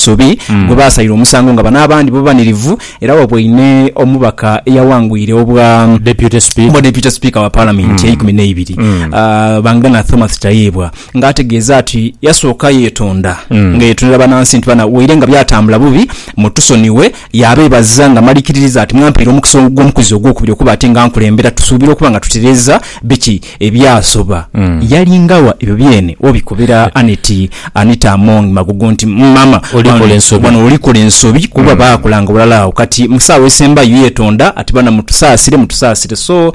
Nsobi gwe baasalira omusango nga bano abandi bo banirivu era waboine omubaka eyawangwire obwa Deputy Speaker. Obwa Deputy Speaker wa Palamenti eyeikumi neibiri, Bangana Thomas Tayebwa nga ategeeza ati yasooka yetonda nga yetonera banansi nti bana waire nga byatambula bubi mutusonighe yabebaza nga malikiririza ati mwampaire omukisa ogw'omukuzi ogwokubiri okuba ati nga nkulembera tusuubira okuba nga tutereeza biki Ebyasoba, yali nga wa ebyo byene wobikobera Annet Anita Among Magogo nti, Mama, wano olikola ensobi kuba baakolanga ghalala agho. Kati mu saawa esembayo yetonda ati, Baana mutusaasire, mutusaasire. So,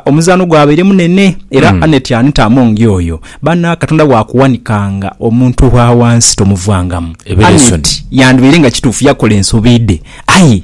omuzaano gwabaire munene era Annet Anita Among yoyo. Baana Katonda bwakuwanikanga omuntu owa wansi tomuvangamu. Annet yandibaire nga kituufu yakola ensobi dhe aye.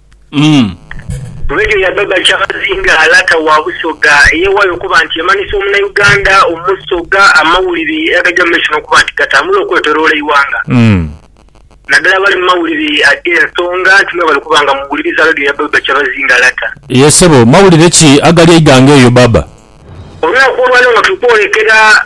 Umm. Lwedio ya Baba Charles nga Lata wa Busoga eyewayo okuba nti emanhisa omunauganda omusoga amawulire agaja mu maiso nokuba nti gatambula okwetoloola eighanga Umm. nadala abali mu mawulire agensonga nti mwebale okuba nga muwuliriza Lwedio ya Baba Charles nga Lata. Ye sebo, mawulire ki agali eighanga eyo Baba? Olunaku olwaleero nga tuli kwolekera.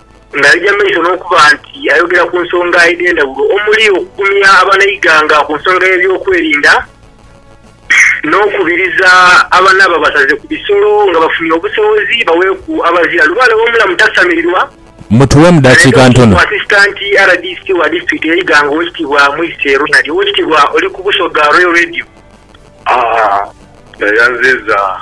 Ng'aija mu maiso n'okuba nti ayogera ku nsonga edh'endhaghulo omuli okugumya abanaighanga ku nsonga y'ebyokwerinda n'okubiriza abana ababasaze ku bisolo nga bafunye obusobozi baweeku abazira lubaale w'omulamu tasamirirwa, Mutuwemu dakiika aleeta ntono. Assistant rdc wa disitulikiti y'e Iganga Owekitiibwa Mwise Ronald Owekitiibwa oli ku Busoga Royal Radio, ayanziza.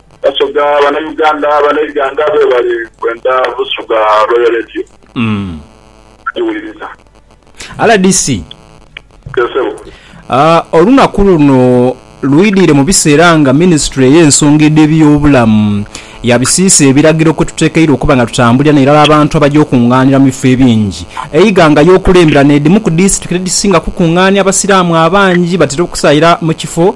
Basoga bana Uganda bana Iganga bebale kwenda busoga Royal Radio bajiwuliriza. Rdc, olunaku luno lwidhire mu biseera nga minisitule ey'ensonga edh'ebyobulamu yabisiisa ebiragiro kwetutekeirwa okuba nga tutambulira n'irala abantu abaja okungaanira mu bifo ebingi e Iganga y'okulembera n'edhimu ku disitulikiti edhisinga okukungaania abasiraamu abangi batera okusaira mu kifo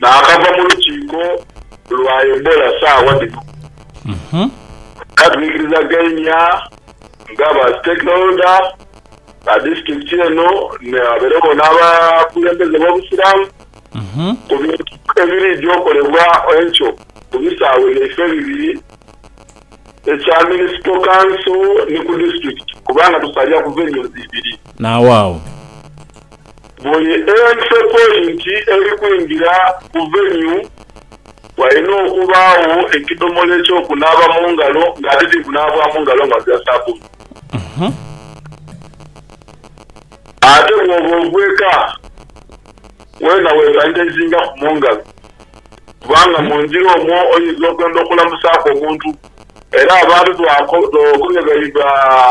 naakava mu lukiiko lwa Ebola saagha dhino era twikirizageimia nga ba stakeholder ba disitulikiti eno abairegho n'abakulembeze b'obusiraamu ku bintu ebiriidya okolebwa enkyo ku bisaawe byaife ebibiri. ekya Municipal Council ni ku Disiturikiti kubanga tusalira ku Venues ibiri. N'awaagho. Buli Entry Point eri kwingira ku Venue walina okubaagho ekidhomola eky'okunaaba mu ngalo nga ate tikunaabwamu ngalo nga bya sabbuni. Ate bw'oba ogw'eka, weena wesanitizingaku mu ngalo. kubanga mu njiri omwo oinza okwenda okulamusaaku omuntu. Era abantu twakooba bye baiba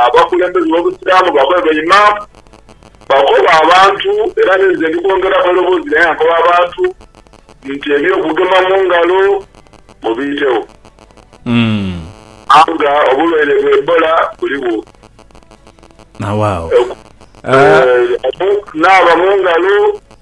abakulembeze b'Obusiraamu bakobe ba Imaam, bakoba abantu era ni nze ndi kwongeraku eiroboozi lyange nga nkoba abantu nti eby'okugema mu ngalo mubiitewo kubanga obulwaire bwa Ebola buligho. Okunaaba mu ngalo.